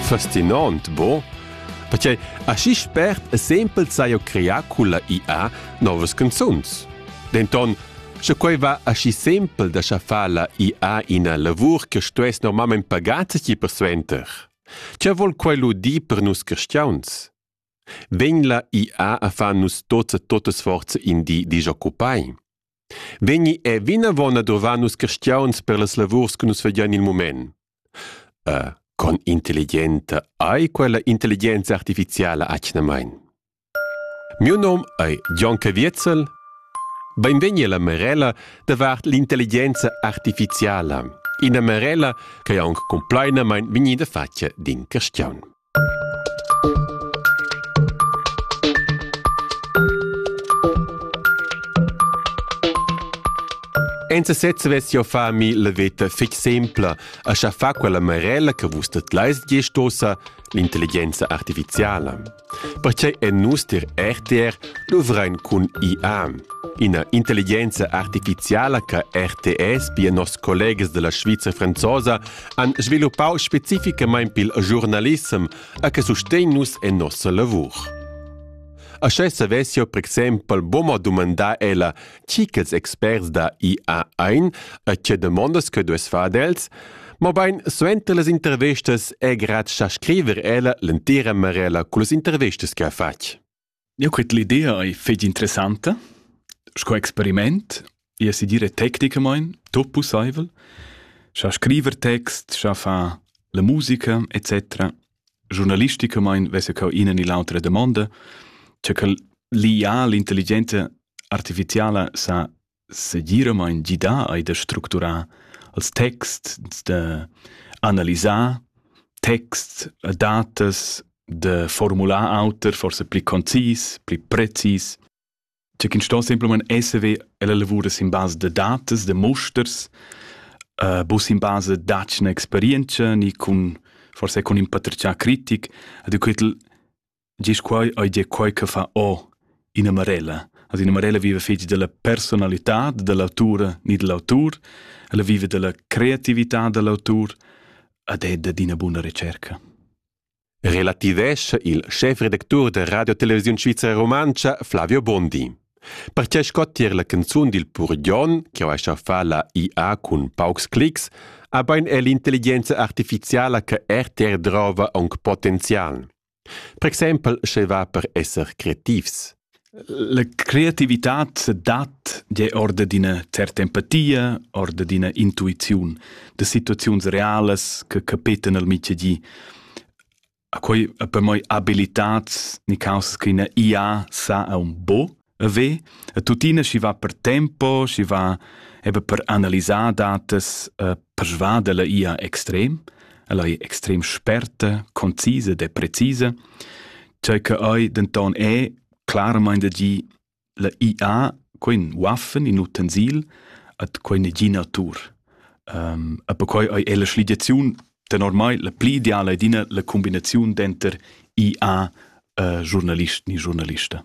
Fascinant, bo? Perché aschi spert e sempel sajo creà culla IA novas canzuns. Denton, sche quei va aschi sempel da schaffar la IA ina lavur che stuess normalment pagata ti persuenter. Che vol quei lu dir per nus cristiauns? Vegn la IA a far nus tots e totes forze in di disoccupai? Vegni è vinavon a durvar nus cristiauns per las lavurs che nus fagian il mument. Uh, con intelligenta ei quella intelligenza artificiala atgnamain. Miu nom ei John Caviezel. Benvegni alla Marella davart l'intelligenza artificiala, ina Marella che è aunc complainamain vegnida fatga d'in cristian. Enza sezza vess jau fa mi la veta fitg simpla, a scha fa quella marella che vus tetlais giestosa l'intelligenza artificiala. Pertgei en nus dir RTR luvrein cun IA, ina intelligenza artificiala che RTS, pia nos collegas della Sviza franzosa, han sviluppau specificamein pil giurnalissem e che sustegn nus en nossa lavur. Aschè savessio per exempel boma dumandar ella chi ch'els experts da IA ein e tge demandas che dues far els, mobein suenter las intervistas è grad cha scriver ella l'entira marella cullas intervistas che ha fatg. Eu cret l'idea ei fetg interessanta sco experiment, i es i dire tecnicamaing tuot pussaivel, scha scriver text, scha far la musica et cetera. Giurnalisticamaing vess eu ina ni l'autra damonda, cha quel liià l'intelligenza artificiala sa segiramaing gidà eir da structurar els texts, da analisar texts, datas, da formular auter, forsa pli concis, pli precis. Cioè chi'ns sto simplamaing esser ve e la lavur es in basa da datas, da musters, uh, bus in basa da'tschna experientscha ni cun forsa cun ün patratgià critic ed eu quel Gis quai ei dir quai che fa o ina marella. Ad ina marella vive fetg della personalità dell'autura ni dell'autur, ella vive della creatività dell'autur ed è dad ina buna ricerca. Relativescha il schefredactur da Radio Televisiun Svizra Romantscha Flavio Bondi. Perche sco tier la canzun dil Purgion, che ho fa la IA cun paucs clics, ha bein è l'intelligenza artificiala che RTR drova aunc potenzial. Per exempel sche va per esser creativs. La creativitad dat je orde d'ina certa empatia, orde d'ina intuiziun, da situaziuns realas che capetan al mitgedi. A quei per moi abilitats ni causas che ina IA sa a un bo, E ve, e tuttina schi va per tempo, schi va eben per analisar datas e persvader la ia extrem, ella è extrem sperta, concise de precise, cioè che ei denton è claramente di la IA quin waffen in utensil at quine gi natur. Um, e perquai ei è la schligiaziun de normal la pli ideala è dina la combinazione denter IA e journalist ni journalista.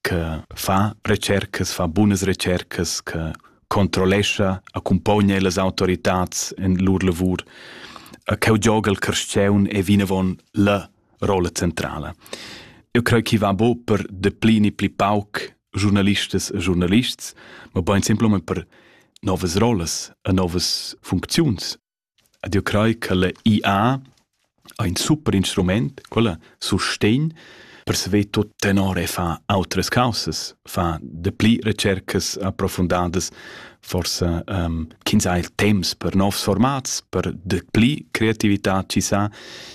che fa retschercas, fa bunas retschercas, che controllescha, accumpogna las autoritads in lur lavur, cheu gioga il carstgaun è vinavon la rolla centrala. Eu creo che va bo per deplini pli pauc giornalistas e giornalists, ma bein simpelmente per novas rollas e novas funcziuns. Ed jeu crei ch'ella IA ha in super instrument, quella sustegn per saver tut tenor e far autras caussas, far dapli retschercas approfundadas, forsa ähm, ch'ins ha il temps per novs formats, per dapli creativitad chi sa.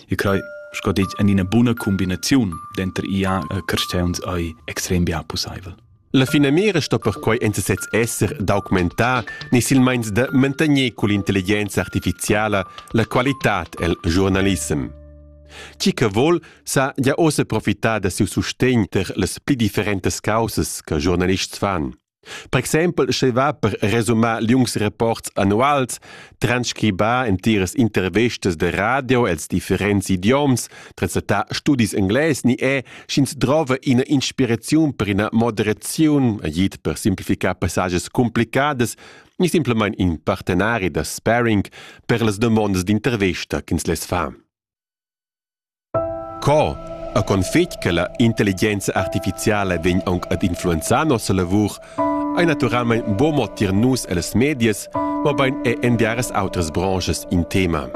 Io crei sco detg en ina buna cumbinaziun denter IA e carstgauns ei extrem bia pusseivel. La finamira sto perquei enta sez esser d'augmentar ni silmeins da mantegner cull'intelligenza artificiala la qualitad el giurnalissem. Chi che vol sa ja ossa profitar da siu sustegn ter las pli differentas causas che giornalists fan. Per exempel, sche va per resumar liungs reports annuals, transcribar entiras intervistas de radio els differents idioms Presentar studis englais ni è, sch'ins drova ina inspiraziun per ina moderaziun, agid per simplificar passages complicadas ni simplamain in partenari da sparring per las dumondas d'intervista ch'ins less far. Co? A config che la intelligenza artificiala vegn anc ad influenzar nossa lavur, ei naturalmein buc mo tier nus ellas medias, mobein è en diversas outras branches in tema.